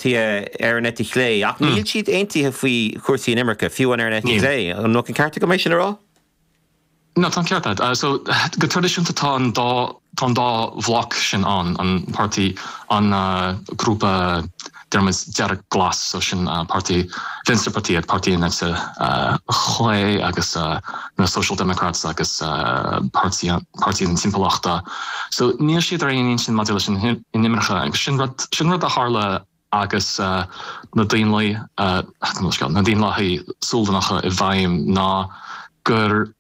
ar an eite chlé, ach níl siad aontaithe faoi chúrsaí inimirce, fiú amháin ar an eite chlé. An bhfuil an ceart agam é sin a rá? No, tá an ceart agat. So, go traidisiúnta tá an dá, tá an dá bhloc sin ann, an páirtí, an grúpa dearg, dearg-glas, so sin páirtí Fiontraíochta, páirtí an eite chlé agus. na Social Democrats agus Páirtí na Timpeallachta. So níl siad ar aon intinn maidir leis an inimirce agus sin rud sin rud a tharla agus na Daonlathaigh na Daonlathaigh Sualannacha i bhfeidhm ná gur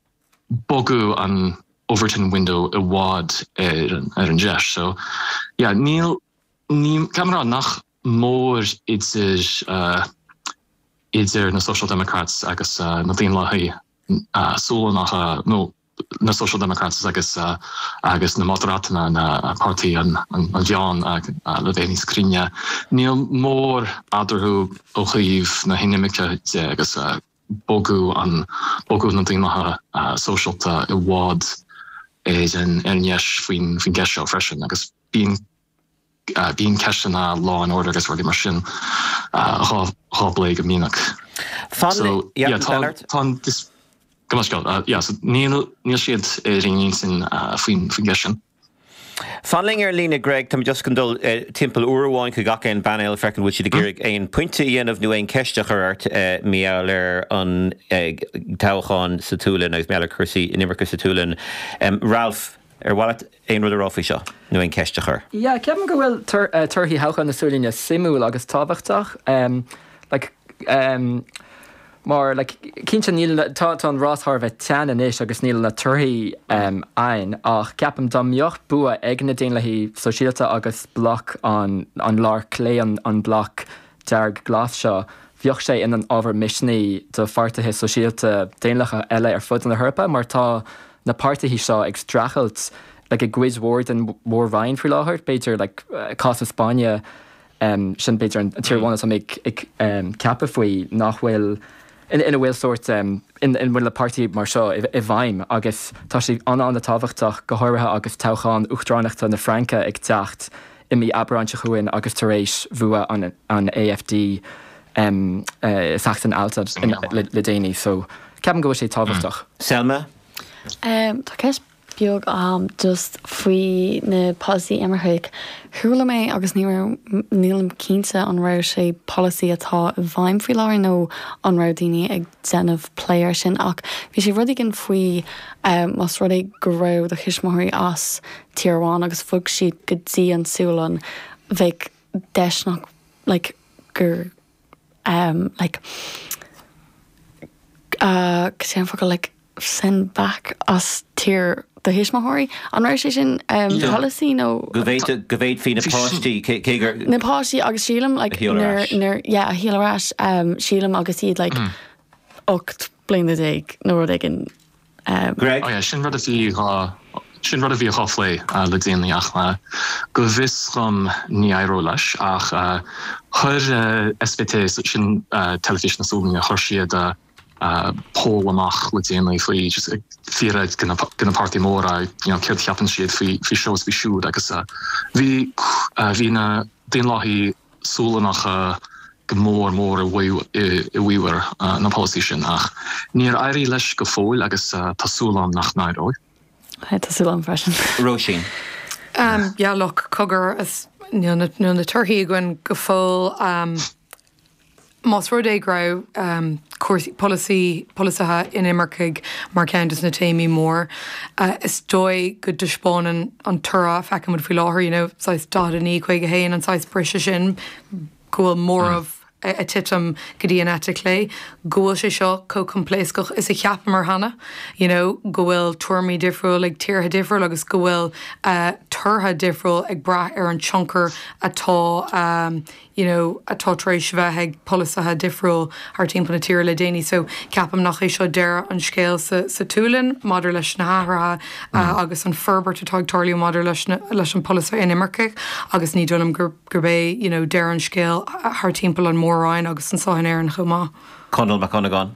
bogadh an Overton Window i bhfad ar an deis. So yeah níl Níl mórán, nach mór, idir idir na Social Democrats agus na Daonlathaigh Sualannacha, nó na Social Democrats agus agus na Moderatanna, na Páirtí an Mheáin, le bheith níos cruinne. Níl mórán eadarthu ó thaobh na hinimirce de agus bogadh an bogadh na Daonlathaithe Sóisialta i bhfad ar dheis faoin gceist seo freisin agus bíonn Bíonn ceisteanna law and order agus rudaí mar sin dhá bplé go minic. Níl siad ar aon intinn faoin gceist sin. Fan linn ar an líne Greg, táimid just chun dul timpeall uair amháin chuig gach aon phainéal ag feiceáil an bhfuil siad ag iarraidh aon phointe a dhéanamh nó aon cheist a chur ort mar gheall ar an toghchán sa tSualainn agus mar gheall ar chúrsaí inimirce sa tSualainn. Ralph? Ar mhaith leat aon rud a rá faoi seo nó aon cheist a chur? Yeah, ceapaim go bhfuil torthaí thoghchán na Sualainne suimiúil agus tábhachtach. Like, mar, like, cinnte níl na, tá an rás thar a bheith teann anois agus níl na torthaí ann ach ceapaim dá mbeadh bua ag na Daonlathaigh Sóisialta agus bloc an, an láir chlé, an bloc dearg glas seo, bheadh sé ina ábhar misnigh do pháirtithe sóisialta daonlathacha eile ar fud na hEorpa mar tá, na páirtithe seo ag streachailt like i gcuid mhór den Mhór-Roinn faoi láthair, b'fhéidir like cás na Spáinne, sin b'fhéidir an tír amháin atá mé ag ceapadh faoi, nach bhfuil, ina bhfuil sórt, ina bhfuil na páirtithe mar seo i bhfeidhm agus tá sé an-an-tábhachtach, go háirithe agus toghchán uachtaránachta na Fraince ag teacht i mí Aibreáin seo chugainn agus tar éis bhua an AfD. em le seachtain agus le déanaí so ceapaim go bhfuil sé tábhachtach. Selma? Em tá ceist bheag agam just faoi na polasaí imircigh. Chuala mé agus ní raibh nílim cinnte an raibh sé polasaí atá i bhfeidhm faoi láthair nó an raibh daoine ag déanamh plé ar sin ach bhí sé rud éigin faoi em más rud é go raibh do thuismitheoirí as tír amháin agus bhog siad go dtí an tSualainn bheadh deis ann like gur, like, ahh, cad é sin an focal, like, send back as tír do thuismitheoirí? An raibh sé sin polasaí nó? Go bhféadfaí na páistí, cé gur. Ó, na páistí agus sílim, like, nuair, yeah, a sheoladh ar ais, sílim agus iad, like, 18 bliana nó rud éigin. Greg? Sea, sin rud a bhí dhá, sin rud a bhí dhá phlé le déanaí ach go bhfios dhom ní éireoidh leis ach chuir SVT, sin Teilifís na Sualainne, chuir siad poll amach le déanaí faoi just ag fiafraí de na páirtithe móra you know céard a cheapann siad faoi seo is faoi siúd agus bhí, bhí na Daonlathaigh, Sualannacha go mór mór i bhfabhar na polasaí sin, ach níor éirigh leis go fóill agus tá súil agam nach n-éireoidh. Sea, tá súil agam freisin. Róisín, Yeah, look, cogar, níl na torthaí againn go fóill. Más rud é go raibh cúrsaí polasaí, polasaithe inimirceach mar cheann de na téamaí mór, is dóigh go dtaispeánann an toradh a fheiceann muid faoi láthair, you know, saghas 49, 51, an saghas briseadh sin, go bhfuil móramh ag titim go dtí an eite chlé, go bhfuil sé seo chomh coimpléascach is a cheapamar cheana, you know, go bhfuil tuairimí difriúil ag tíortha difriúil agus go bhfuil torthaí difriúil ag brath ar an tionchar atá, you know atá tar éis bheith ag polasaithe difriúil thar timpeall na tíre le déanaí so ceapaim nach é seo deireadh an scéil sa sa tSualainn maidir leis na hathruithe agus an forbairt atá ag tarlú maidir leis na leis an polasaithe inimircigh agus ní dóigh liom gur gurb é you know deireadh an scéil thar timpeall an Mhór-Roinn agus anseo in Éirinn chomh maith. Conall Mac Dhonnagáin,